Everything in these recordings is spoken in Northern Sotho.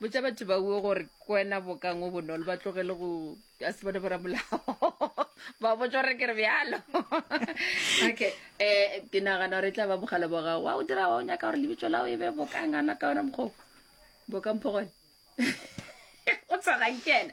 botša batho ba uo gore kwena bokang o bonolo ba tlogele go a se bone boramolao ba botsa gore ke re bjalo okay um ke nagana gore e tla ba mogala ba gago wa o dira wa o nyaka gore lebitso lao e be bokang ana ka ona mokgoko bokang phogone o tshwagankena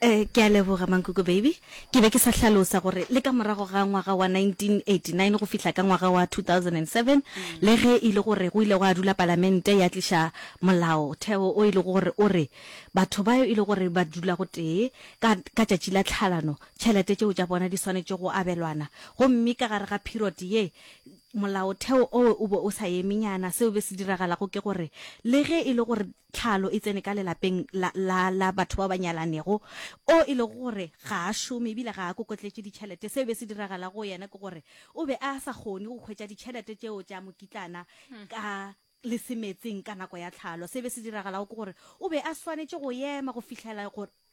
Ee, ke a leboga, Mankoko Baby. Ke be ke sa hlalosa gore le ka morago ga ngwaga wa 1989 go fihla ka ngwaga wa 2007, le ge e le gore go ile gwa dula Palamente ya tliša Molaotheo o e lego gore o re batho bao e lego gore ba dula gotee ka ka tšatši la tlhalano tšhelete tšeo tša bona di swanetše go abelwana, gomme ka gare ga period ye Molaotheo owe o be o sa eme nyana. Seo be se diragalago ke gore le ge e le gore Tlhalo e tsene ka lelapeng la, la, la batho bao ba nyalanego, o e lego gore ga a šome e bile ga a kokotletše ditšhelete. Seo be se diragala go yena ke gore o be a sa kgone go hwetša ditšhelete tšeo tša mokitlana ka lesemetseng ka nako ya tlhalo. Se be se diragalago ke gore o be a swanetše go ema go fihlela gore,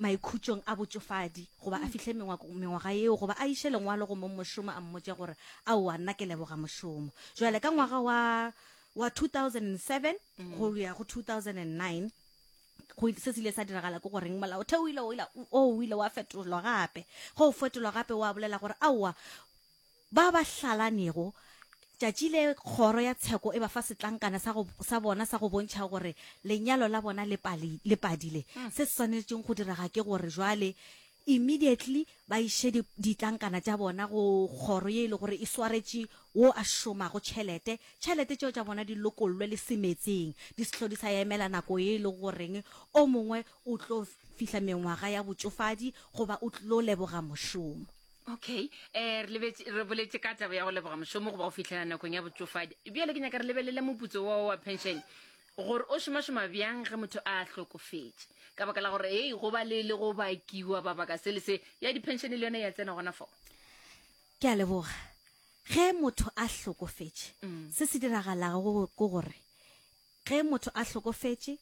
maikhutšong a botšofadi goba a fihle mengwako, mengwaga yeo goba a iše lengwalo go mong mošomo a mmotše gore, Aowa, nna ke leboga mošomo. Bjale ka ngwaga wa, wa 2007 go ya go 2009, go ile, se se ile sa diragala ke goreng, Molaotheo o ile, o ile, o, o ile wa fetolwa gape. Ge o fetolwa gape, wa bolela gore, Aowa, Ba ba hlalanego, tšatši le kgoro ya tsheko e ba fa setlankana sa, go, sa bona sa go bontšha gore lenyalo la bona le, pali, le padile. Mm. Se se swanetšeng go direga ke gore jwale immediately ba iše di, ditlankana tša bona go kgoro ye e le gore e swaretše wo a šomago tšhelete. Tšhelete tšeo tša bona di lokollwe le se metseng, di sehlo di sa emela nako ye e le goreng o mongwe o tlo fihla mengwaga ya botšofadi goba o tlo leboga mošomo. okay um re lebetse re boletse ka taba ya go leboga mošomo goba go fitlhela nakong ya botsofadi bjale ke nyaka re lebelele moputso wa wa pension gore o šomašoma bjang ge motho a hlokofetše ka baka la gore ei go ba le le go bakiwa ba baka se le se ya di-pension le yone ya tsena gona foo ke a leboga ge motho a hlokofetše Mm. se se diragalago go- ke gore Ge motho a hlokofetše,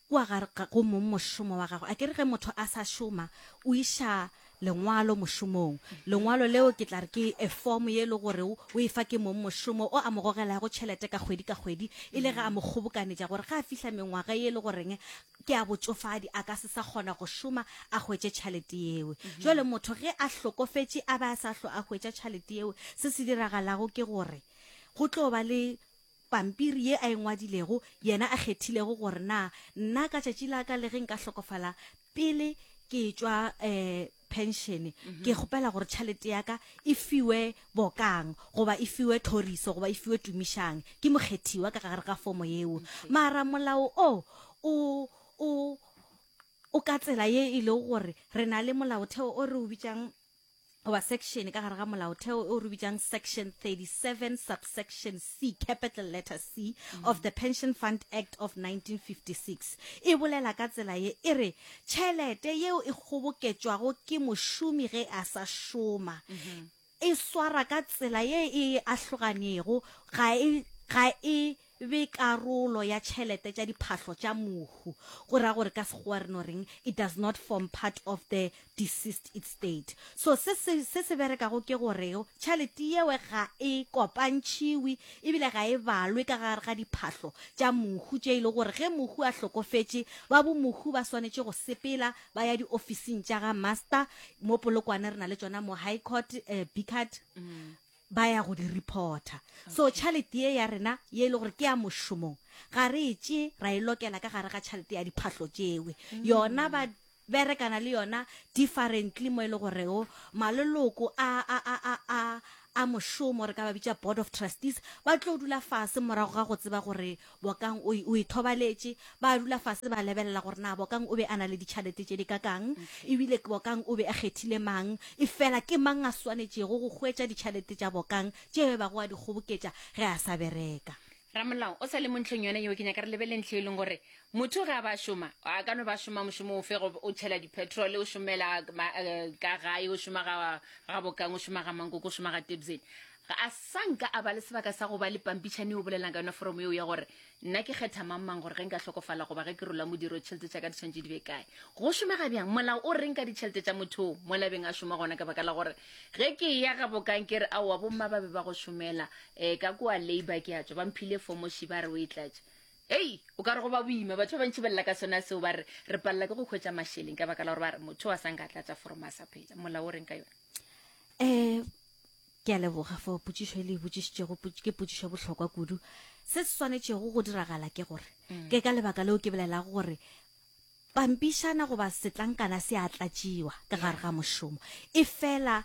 kua ga re go mong mošomo wa gagwe. Akere ge motho a sa šoma, o iša lengwalo mošomong. Lengwalo leo ke tla re ke efomo ye e le gore o e fa ke mong mošomo o a mo gogelago tšhelete ka kgwedi ka kgwedi, e le ge a mo kgobokanetša gore ge a fihla mengwaga ye e le goreng ke ya botšofadi a ka se sa kgona go šoma a hwetše tšhalete yeo. Bjale motho ge a hlokofetše a be a sa hlwe a hwetša tšhalete yeo, se se diragalago ke gore go tlo ba le pampiri ye a e ngwadilego, yena a kgethilego gore na nna ka tšatši la ka le ge nka hlokofala pele ke etšwa um phenšene, ke kgopela gore tšhalete ya ka e fiwe bokang goba e fiwe thoriso goba e fiwe tumišang. Ke mokgethiwa ka gare ga fomo yeo. Mara molao o, o, o, o ka tsela ye e lego gore re na le molaotheo o re o bitšang goba section ka gare ga molaotheo o re bitšang section 37 subsection c capital letter c of the pension fund act of 1956 e bolela ka tsela ye e re tšhelete yeo e kgoboketšwago ke mošomi ge a sa šoma e swara ka tsela ye e ahloganego ga e ga e be karolo ya tšhelete tša diphahlo tša mohu, go ra gore ka Sekgowa re no reng, it does not form part of the deceased etstate. So se se, se se berekago ke gore tšhalete yewe ga e kopantšhiwi ebile ga e balwe ka gare ga diphahlo tša mohu tše e le gore ge mohu a hlokofetše, ba bomohu ba swanetše go sepela ba ya diofising tša ga Master, mo Polokwane re na le tšona mo High Court, eh, Bickert, ba ya go di reporta so tšhalete ye ya rena ye e le gore ke ya mošomong ga re e tše ra e lokela ka gare ga tšhalete ya diphahlo tšewe yona ba berekana le yona differently mo e le goreo maloloko a a a a a a mošomo re ka ba bitša board of trustees ba tlo dula fase morago ga go tseba gore Bokang o, o ithobaletše. Ba dula fase ba lebelela gore na Bokang o be a na le ditšhalete tše di kakang, e bile Bokang o be a kgethile mang. Efela ke mang a swanetšego go hwetša ditšhalete tša Bokang tšeo a bego a di kgoboketša ge a sa bereka? Ramolao o sa le mo ntlheng yona yeo. Ke nyaka re lebelele ntlha e leng gore motho ge a ba šoma, a ka no ba šoma mošomo ofe, go o tšhela dipetrole, o šomela ka gae, o šoma ga, ga Bokang, o šoma ga Mankoko, o šoma ga Tebzeni. Ga a sa nka a ba le sebaka sa go ba le pampitšhane yo bolelang ka yona foromo yeo ya gore, Nna ke kgetha mang-mang gore ge nka hlokofala goba ge ke rola modiro ditšhelete tša ka di tshwanetše di be kae. Go šomega bjang? Molao o reng ka ditšhelete tša motho yoo? Mo labeng a šoma gona ka baka la gore ge ke eya gabokang ke re, Aowa, bomma ba be ba go šomela. Ee, ka kua labour ke a tšwa. Ba mphile fomo ši ba re o e tlatše. Hei! O ka re go ba boima. Batho ba bantši ba lla ka sona seo ba re, Re palela ke go hwetša mašeleng ka baka la gore ba re motho yo a sa nka a tlatša foromo a sa phela. Molao o reng ka yona? Ee, Ke a leboga for potšišo e le e botšišitšego. Ke potšišo ya bohlokwa kudu. Se se swanetšego go diragala ke gore, mm. ke ka lebaka leo ke bolelago gore pampišana goba setlankana se a tlatšiwa ka gare ga mošomo e fela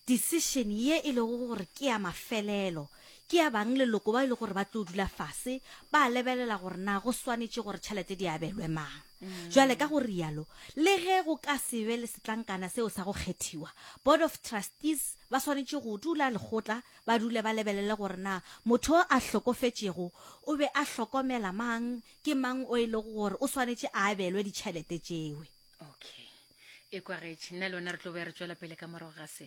decision ye e lego gore ke ya mafelelo ke ya bang leloko ba e le gore ba tlo dula fase ba lebelela gore na go swanetše gore tšhelete di abelwe mang Bjale, ka go rialo, le ge go ka se be le setlankana seo sa go kgethiwa, Board of Trustees ba swanetše go dula lekgotla, ba dule ba lebelele gore na motho yo a hlokofetšego o be a hlokomela mang, ke mang o e lego gore o swanetše a abelwe ditšhelete tšeo. Okay. Ekwa, Gage, nna le wena re tlo be re tšwela pele ka morago ga se.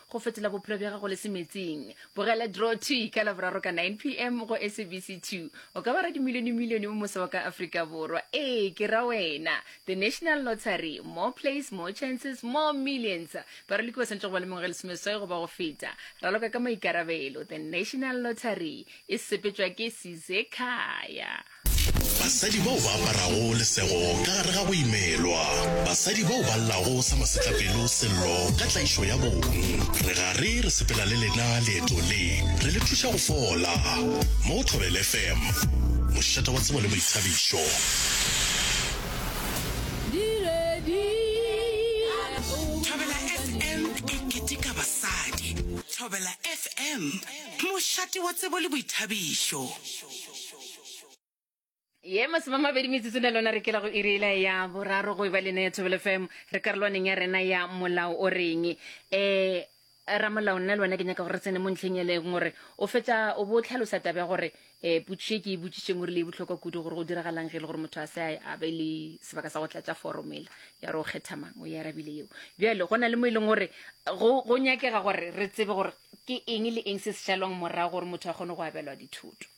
go fetola bophelo bja gago le semetsing bogela draw 2 ka laboraro ka 9 pm go sabc 2 o ka ba radimilionemilione mo mose wa ka afrika borwa ee ke ra wena the national lottery more plays more chances more millions baraloki ba swanetše go ba le mengwaga lesomeswai goba go feta raloka ka maikarabelo the national lottery e sepetšwa ke sizekhaya Basadi bao ba aparago lesego ka gare ga go imelwa. Basadi bao ba llago sa masetlapelo sello ka tlaišo ya bong. Re gare re sepela le lena leeto le, re le thuša go fola. Mo Thobela FM, mošate wa tsebo le boithabišo. Thobela FM e keteka basadi. Thobela FM, mošate wa tsebo le boithabišo. ye masomamabedi metsotso na lona re kela go irela ya boraro go eba lena ya thobelo fm re karolwaneng ya rena ya molao o reng um eh, ramolao nna le wena ke nyaka gore re tsene mo ntlheng eleng gore o fetsa o bo tlhalosa taba ya gore um potšišo e ke e botsišeng o rile e botlhokwa kudu gore go diragalang ge e le gore motho a se a be le sebaka sa go tlatša foromo ela ya gore o kgetha mang o e arabile yeo bjale go na le mo e leng gore go nyakega gore re tsebe gore ke eng le eng se se šalwang morago gore motho a kgone go abelwa dithoto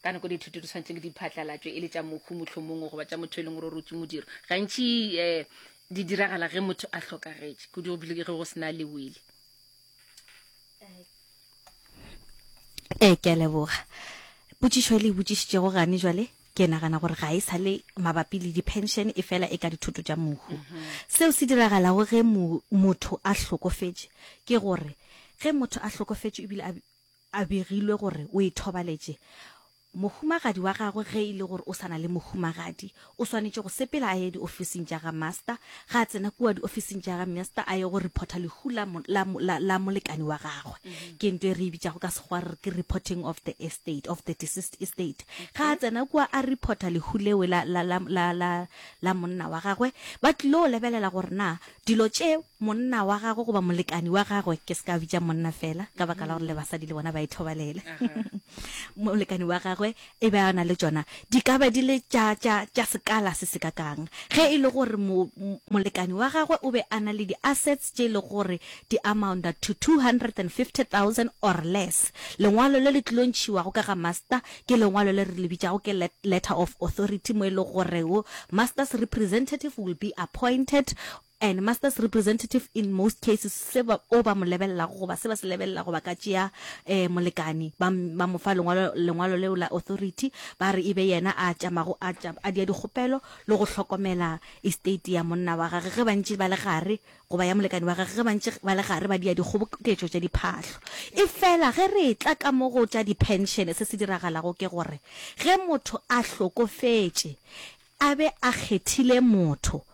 ka nako dithuto di tshwanetse di phatlalatšwe e le tša mokhu mohlomongwe goba tša motho e leng gore o rotse modiro gantši um di diragala ge motho a hlokagetše kudu go bile ge go sena le wele ee eh, ke a leboga potsišo e le e botsišitšego gane jale ke nagana gore ga e sa le mabapi le di-pension e fela e ka dithoto tša mohu seo se diragalago ge motho a hlokofetše ke gore ge motho a hlokofetše ebile A begilwe gore o e thobaletše mohumagadi wa gagwe ge e le gore o sa na le mohumagadi, o swanetše go sepela a ye diofising tša ga Master, ga a tsena kua diofising tša ga Master a ye go reporta lehu la, la, la, la molekane wa gagwe. Ke ntho e re e bitšago ka Sekgowa re re ke reporting of the estate, of the deceased estate. Ga a tsena kua a reporta lehu leo la, la, la, la, la, la monna wa gagwe, ba tlilo lebelela gore na dilo tšeo monna wa gagwe goba molekani wa gagwe, ke se ka bitša monna fela ka baka la gore le basadi le bona ba ithobalele, molekani wa gagwe e be a na le tšona, di ka ba di le tša, tša, tša sekala se se kakang. Ge e le gore mo, molekani wa gagwe o be a na le di-assets tše e lego gore di amounta to 250,000 or less, lengwalo le le tlil'o ntšhiwago ka ga Master ke lengwalo le re le bitšago ke Letter of Authority, mo e lego goreo Master's representative will be appointed and master's representative in most cases se ba o ba mo lebelelago goba se ba se lebelela goba ka tšea eh, molekani ba ba mo fa lengwalo lengwalo leo la authority ba re e be yena a tšamago a tša- a dia dikgopelo le go hlokomela estate ya monna wa gage ge bantši ba le gare goba ya molekani wa gage ge bantši ba le gare ba dia dikgoboketšo tša diphahlo e fela ge re tla ka mo go tša di-pension se se diragalago ke gore ge motho a hlokofetše a be a kgethile motho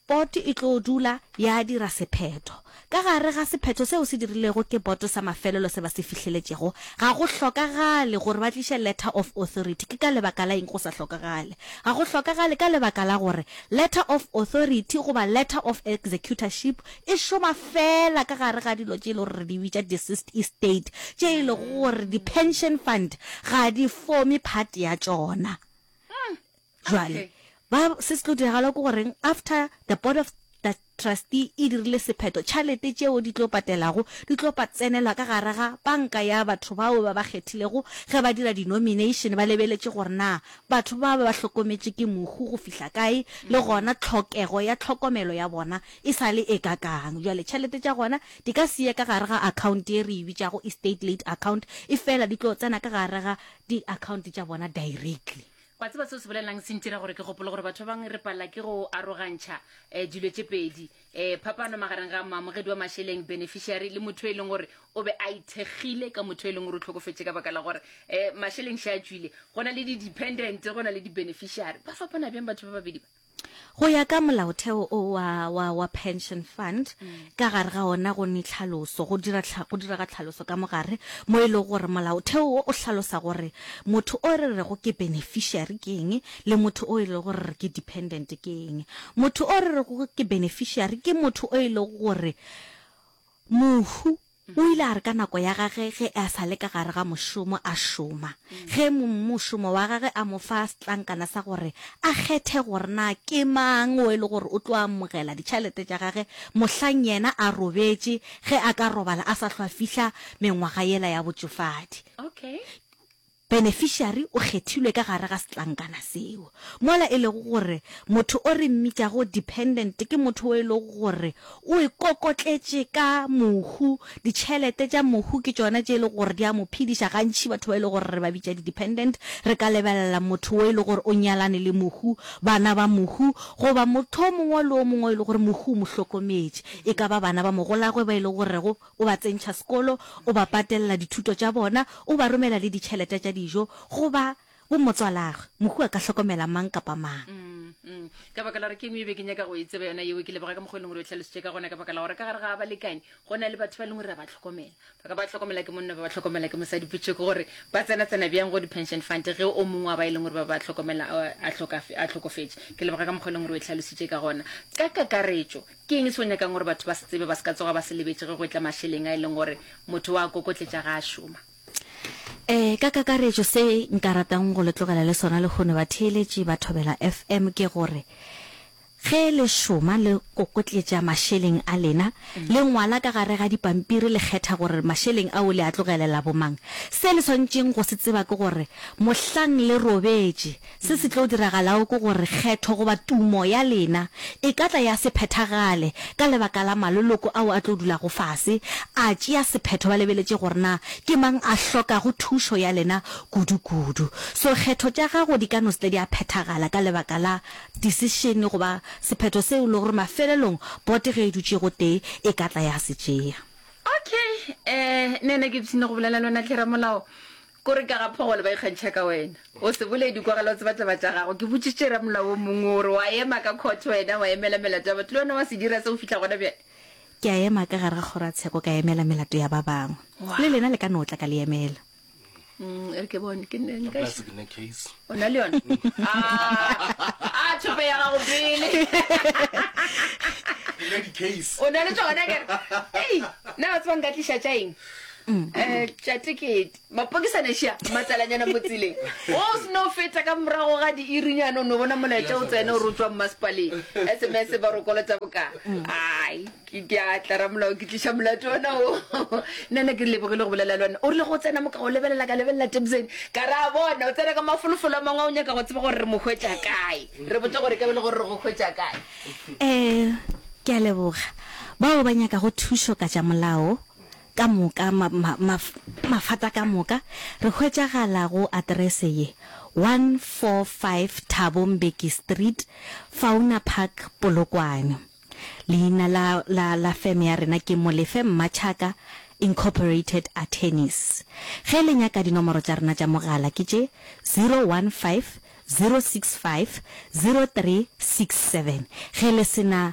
Boto e tlo dula ya dira sephetho. Ka gare ga sephetho seo se dirilwego ke boto sa mafelelo se ba se fihleletšego, ga go hlokagale gore ba tliše letter of authority. Ke ka lebaka la eng go sa hlokagale? Ga go hlokagale ka lebaka la gore letter of authority goba letter of executorship e šoma feela ka gare ga dilo tše e lego gore re di bitša deceased estate, tše e lego gore di-pension fund ga di forme part ya tšona. Jwale, ba, se se tlo diragala ke goreng, after the board of trustee e dirile sephetho, tšhalete tšeo di tlo patelago, di tlo pa tsenelwa ka gare ga panka ya batho bao ba ba kgethilego, ge ba dira di-nomination, ba lebeletše gore na batho ba ba ba hlokometše ke mohu go fihla kae, le gona tlhokego ya tlhokomelo ya bona e sa le e kakang. Jwale, tšhalete tša gona di ka se ye ka gare ga account ye re e bitšago estate late account, efela di tlo tsena ka gare ga di-account tša bona directly. Wa tseba seo se bolelelang? Se ntira gore ke gopole gore batho ba bangwe re palela ke go arogantšha um dilo tše pedi, um phapano magareng ga moamogedi wa mašeleng, beneficiary, le motho e leng gore o be a ithekgile ka motho e leng gore o tlhokofetše ka baka la gore um mašeleng še a tšwile. Go na le di-dependent, go na le di-beneficiary. Ba fapana bjang batho ba babedi ba? Go ya ka molaotheo o wa wa wa pension fund ka gare ga ona go ne tlhaloso go dira tlha, go dira ga tlhaloso ka mogare mo e le gore molaotheo wo o hlalosa gore motho o re rego ke beneficiary ke eng le motho o e le gore re ke dependent ke eng. Motho o re rego ke beneficiary ke motho o e le gore mohu O ile a re ka nako ya gage ge a sa le ka gare ga mošomo a šoma, ge mošomo wa gage a mo fa setlankana sa gore a kgethe gore na ke mang o e le gore o tlo amogela ditšhalete tša gage mohlang yena a robetše ge a ka robala a sa hlwa fihla mengwaga yela ya botšofadi. Beneficiary o kgethilwe ka gare ga setlankana seo, mola e lego gore motho o re mmitšago dependent ke motho wo e lego gore o e kokotletše ka mohu, ditšhelete tša mohu ke tšona tše e lego gore di a mo phediša. Gantši batho ba e lego gore re ba bitša di-dependent re ka lebelela motho wo e lego gore o nyalane le mohu, bana ba mohu goba motho o mongwe le o mongwe o e lego gore mohu o mo hlokometše, e ka ba bana ba mogolagwe ba e lego gorego, O ba tsentšha sekolo, o ba patelela dithuto tša bona, o ba romela le ditšhelete tša dijo. Goba, bo motswalagwe, mohu a ka hlokomela mang kapa mang. Mm, ka baka la gore ke engwe e be ke nyaka go e tseba yona yeo, ke leboga ka mokgwa e leng gore o hlalositše ka gona, ka baka la gore ka gare ga balekane go na le batho ba e leng gore ra ba tlhokomela, ba ka ba tlhokomela ke monna, ba ba tlhokomela ke mosadi, potšo ke gore ba tsena-tsena bjang go di-pension fund ge o mongwe wa ba e leng gore ba ba tlhokomela a hlokofetše. Ke leboga ka mokgwa e leng gore o e hlalositše ka gona. Ka kakaretšo, Ke eng se o nyakang gore batho ba se tsebe ba se ka tsoga ba se lebetše ge go etla mašeleng a e leng gore motho wa a kokotletša ga a šoma? Ee, ka kakaretšo se nka ratang go le tlogela le sona lehono batheeletši ba Thobela FM ke gore, Ge le šoma le kokotletša mašeleng a lena, le ngwala ka gare ga dipampiri le kgetha gore mašeleng ao le a tlogelela bomang. Se le swanetšeng go se tseba ke gore mohlang le robetše, Se se tlo diragalago ke gore kgetho goba tumo ya lena e ka tla ya se phethagale ka lebaka la maloloko ao a tlo dulago fase a tšea sephetho ba lebeletše gore na ke mang a hlokago thušo ya lena kudu-kudu. So kgetho tša gago di ka no se tle di a phethagala ka lebaka la disešene goba sephetho seo e lego gore mafelelong bote ge e dutše gotee e ka tla ya se tšea. Okay, eh, nene ke ipshine go bolela le wena hle ramolao. Kore ka ga phogolo ba ikgantšha ka wena. O se boledi kwa gala o tseba taba tša gago. Ke botšitše ramolao o mongwe gore wa ema ka court wena wa emela melato ya batho le wena wa se dira se go fihla gona bjale. Ke a ema ka gare ga kgoro ya tsheko ka emela melato ya ba bangwe. Le lena le ka no tla ka le emela. E re ke bone ke nne nka. Plus ke ne case. O na le yona. A a thope ya gago pele. Ke le di case. O na le tsona ke. Hey, na o tseba nka tlisha tša eng? tšatekete mapokisaneša matalanyana mo tseleng o seno feta ka morago ga diirinyane o no bona molaetša o tsene o rotswang masepaleng sms ba rokolotsa boka ai ke diatla ramolao ke tliša molato ona o nene ke lebogile go bolela le one o rile go tsena moka go lebelela ka lebelela tebsen ka re a bona o tsena ka mafolofolo a mangwe o nyaka go tseba gore re mo hwetša kae re botsa gore ka bele gore re go hwetša kae um ke a leboga bao ba nyakago thušo ka tša molao ka moka, ma, ma, ma, mafata ka moka, re hwetšagala go aterese ye, 145 Thabo Mbeki Street, Fauna Park, Polokwane. Leina la, la, la feme ya rena ke Molefe Mmatšhaka Incorporated Attorneys. Ge le nyaka dinomoro tša rena tša mogala ke tše, 015 065 0367. Ge le se na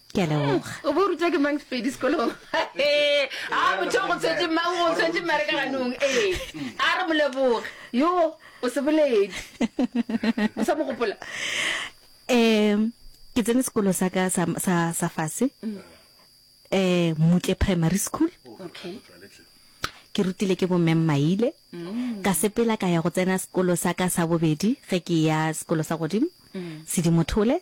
Ke a leboga. O bo rutwa ke mang Sepedi sekolong? Ee, a motho go tshwetse mang go tshwetse mare ka ganong. Ee, a re moleboge. Yo, o se boledi. O sa mo gopola? Um ke tsene sekolo sa ka sa sa sa fase um mutle primary school Okay. ke rutile ke bomme mmaile ka sepela ka ya go tsena sekolo sa ka sa bobedi ge ke ya sekolo sa godimo sedimothole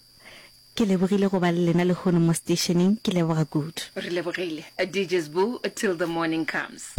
Ke lebogile go ba le lena lehono mo steisheneng, ke leboga kudu. Re lebogile. DJ Sbu till the morning comes.